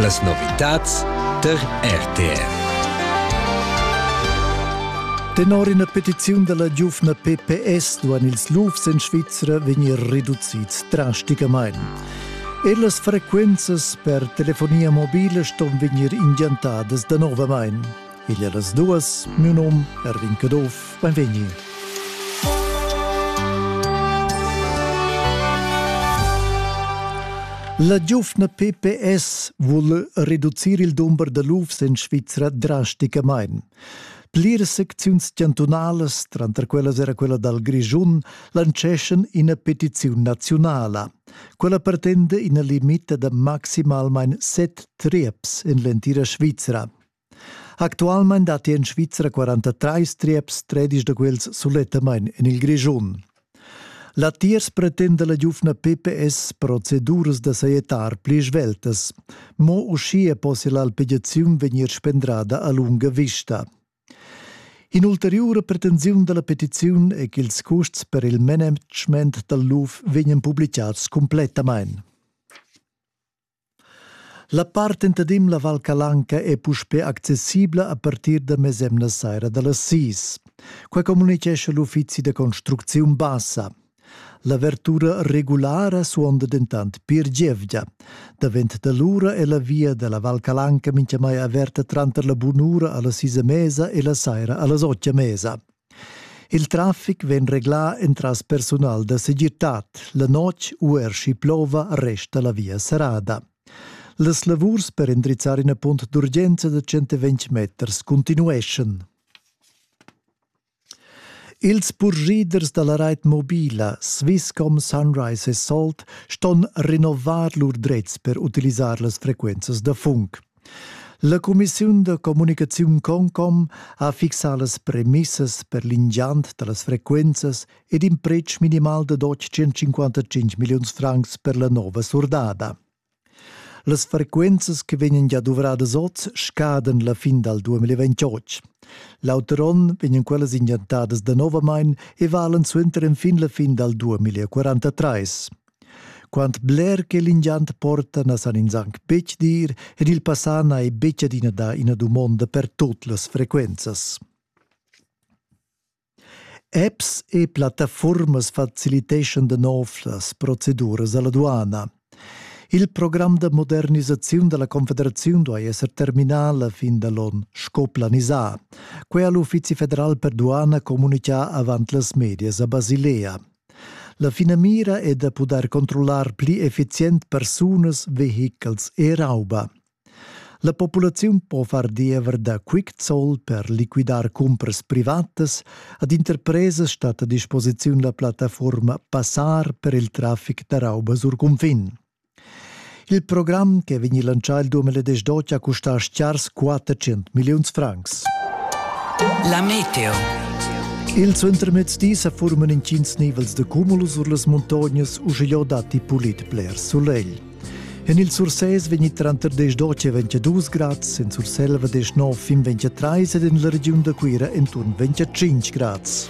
Las novitads tar RTR. Tenor ina petiziun da la giuvna PPS duan ils lufs en Svizra vegnir reducids drasticamain. Er las frequenzas per telefonia mobila ston vegnir ingiantadas danovamain. Igl er las duas, miu nom Erwin Caduff, benvegni. La giufna PPS vul reducir il dumber da lufs en Svizra drasticamain. Pliras secziuns chantunalas, tranter quellas era quella dal Grischun, lanceschan ina petiziun naziunala. Quella pretende ina limita da maximalmain set trieps en l'entira Svizra. Actualmein datti en Svizra 43 trieps, tredisch da quels sulettamain en il Grischun. Latiers pretenda la giuvna PPS proceduras da sajettar pli sveltas. Mo uschia possia l'alpegiaziun vegnir spendrada a lunga vista. In'ulteriura pretensiun da la petiziun è ch'ils custs per il management dal luf vegnan publicads cumplettamain. La part entadem la Val Calanca è puspè accessibla a partir da mesemna saira da las sis. Quai communitgescha l'uffizi da construcziun bassa. L'avertura regulara suonda dentant pir gievgia. Davent da l'ura è la via da la Val Calanca mintgamai averta tranter la bunura a las sis e mesa e la saira a las otg e mesa. Il traffic vegn reglà entras persunal da segirtad. La notg u er schi plova resta la via serrada. Las lavurs per endrizzar ina punt d'urgenza da 120 meters continueschan. Ils purschiders da la rait mobila Swisscom, Sunrise e Salt ston rinnovar lur drets per utilisar las frequenzas da funk. La cumissiun da communicaziun Concom ha fixà las premissas per l'ingiant da las frequenzas ed in pretsch minimal da doc 155 milliuns francs per la nova surdada. Las frequenzas che vegnan gia duvradas oz scadan la fin dal 2028. L'auter onn vegnan quellas ingiantadas danovamain e valan suenter enfin la fin dal 2043. Quant bler che l'ingiant porta na san ins anc betg dir ed il passà n'ha ei betg adina dà ina dumonda per tut las frequenzas. Apps e plattafuormas faciliteschan da nov las proceduras alla duana. Il program da modernisaziun dalla Confederaziun duai esser terminà la fin da l'on sco planisà. Quei ha l'Uffizi federal per duana communicà avant las medias a Basilea. La finamira è da pudair controllar pli effizient persunas, vehichels e rauba. La populaziun po far diever da Quickzoll per liquidar cumpras privatas. Ad interpresas stat a disposiziun la plattaforma Passar per il traffic da rauba sur cunfin. Il program che vegni lancià il 2018 ha custà schars 400 milliuns francs. La meteo. Il suentermezdi sa forman intgins nivels de cumulus sur las montognas uschigliò datti pulit bler sulegl. En il Sursés vegni tranter 10 e 22 grads, in Surselva 19 fin 23 ed in la regiun da Cuira intorno 25 grads.